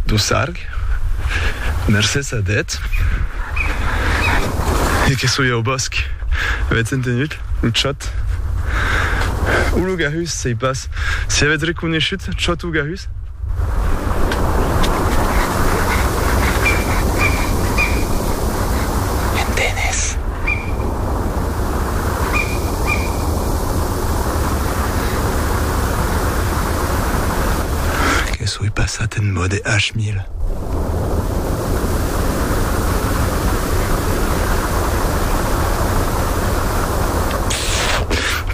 Dussarg, mercés a Death e que soi au bòsc, avètz entenut? lo chòt o lo garrus, sei pas si avètz reconeishut, chòt o garrus? M'entenes? Que soi passat en mòde H mil.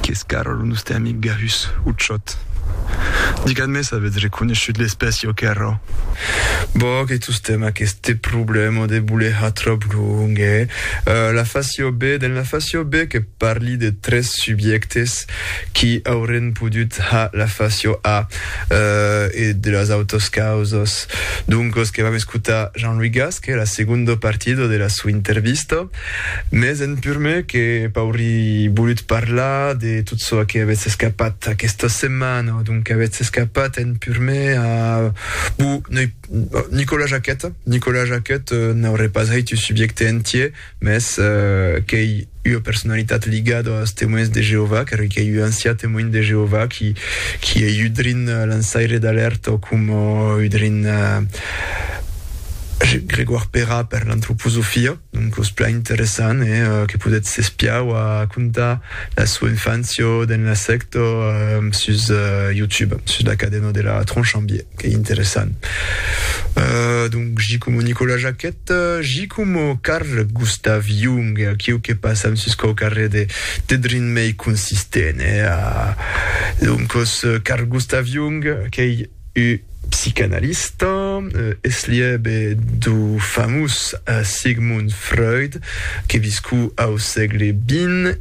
Qu'es Carol, lo nòste amic Gahus, o Chot? Digatz-me s'avetz reconeishut l'espècia o qu'errò. Bon, que tostemp aqueste problèma de bolejar tròp long, eh? La fascio be, dens la fascio be que. Parli de tres subjèctes qui aurén podut ha la facio a e de las autos causas. Doncos que vam escotar Jean-Louis Gasque, la segondo partido de la sua intervista. Mes en purme que p'auri bolut parlar de tot çò que avètz escapat aquesta setmana o donc avètz escapat en purme a bu, noi, Nicolas Jacquet, Nicolas Jacquet n'auré pas hèit un subjècte entier, Mès qu'ei ua personalitat ligada als Temoins de Jeovà, carque qu'ei un ancià Temoin de Jeovà qui, qui ei udrin lançaire d'alèrta o coma udrin Grégoire Perra per l'antroposofia. Donc es plan interessant e que podètz s'espiar o contar la sua infància dens la sècta sus YouTube, sus la cadena de la Tronchambier, qu'ei interessant. Donc, j. Coma Nicolas Jacquet. Eth Gicomo Carl Gustav Jung, aquiu que passam sus quau carrèr de dedrin mei consistent, hè? Doncos, Carl Gustav Jung qu'ei ua psicanalista, eslhèbe dau famós Sigmund Freud, que viscú au sègle xx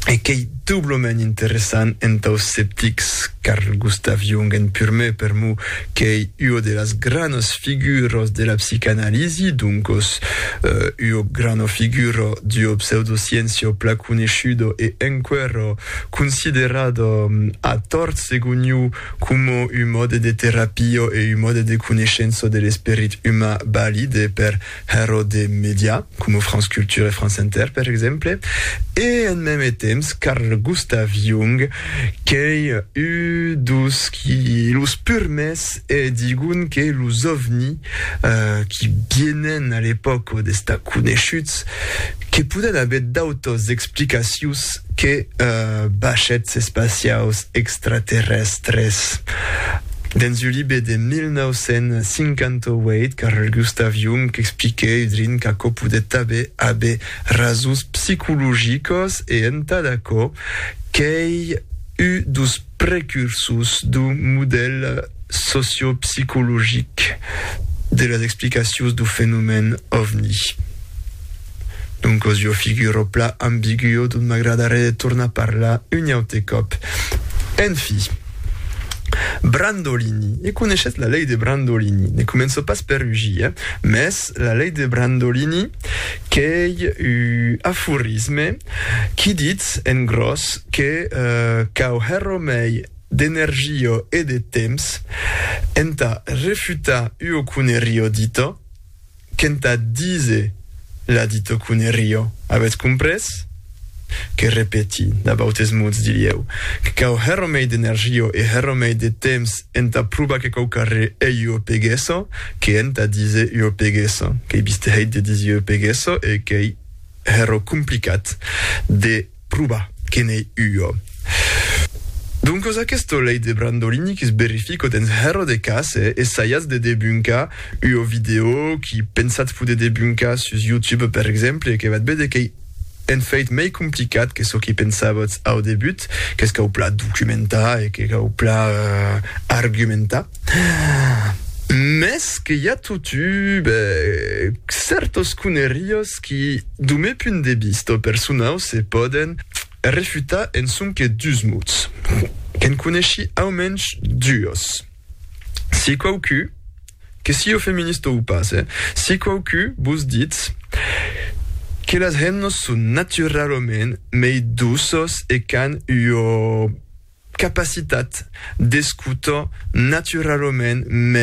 e qu'ei, Doblament interessant entau sceptics, Carl Gustav Jung en purmè per mo qu'ei ua de las granas figuras de la psicanalisi, doncos ua grana figura d'ua pseudosciéncia placoneishuda e enqüèra considerada a tòrt segon iu coma un mòde de terapia e un mòde de coneishença de l'esperit umà balide per Hèro de mèdia, coma France Culture e France Inter per exemple, e en mème temps Carl Gustav Jung qu'ei ú dos qui los purmès e digon que los ovni qui bienen a l'epòca d'estar coneishuts que poden aver d'autas explicacius que bachets espaciaus extraterrèstres. Dens un libe de 1958, Carl Gustav Jung expliquèt udrin qu'aquò podèt tanben aver rasons psicologiques e entad aquò qu'ei un dos precursors dau modèl sociopsicologic de las explicacions dau fenomèn ovni. Doncos jo figuro pla ambiguo dont m'agradaré de tornar parlar un aute còp. En fi. Brandolini, e coneishetz la lei de Brandolini, ne començo pas per rugir, eh? Mès la lei de Brandolini qu'ei u aforisme qui ditz, en gròs, que cau hèr-ro mei d'energio e de temps entà refutar uo conerir-ro ditto, Qu'entà díser la dito qu'une rio, avètz comprés? Que repeti, d'abautes mots dirieu, que cau hèr omei d'energio e hèr omei de temps entà probar que quauquar re ei ua peguesa, que entà díser ua peguesa, qu'ei bistèit de díser ua peguesa e qu'ei hèr o complicat de Pruba que n'ei ua. Doncos aqueste lei de brandolini que's berrifico dens hèr de cas e essaiatz de debuncar ua vidèo qui pensatz poder debuncar sus YouTube per exemple e que vat bede qu'ei en fèit mei complicat que çò qui pensavotz au debut, qu'es cau plan documentar e que cau plan argumentar. Mès que i a totu, ben, cèrtos coneriós. qui, dau meu punt de vista personau, se pòden refutar en sonque dus mots, que'n coneshi au mensh duos. Si quauqui, que sieu feminista o pas, eh, si quauqui vos ditz que las hemnas son naturalament mei doças e qu'an ua capacitat d'escutar naturalament mei,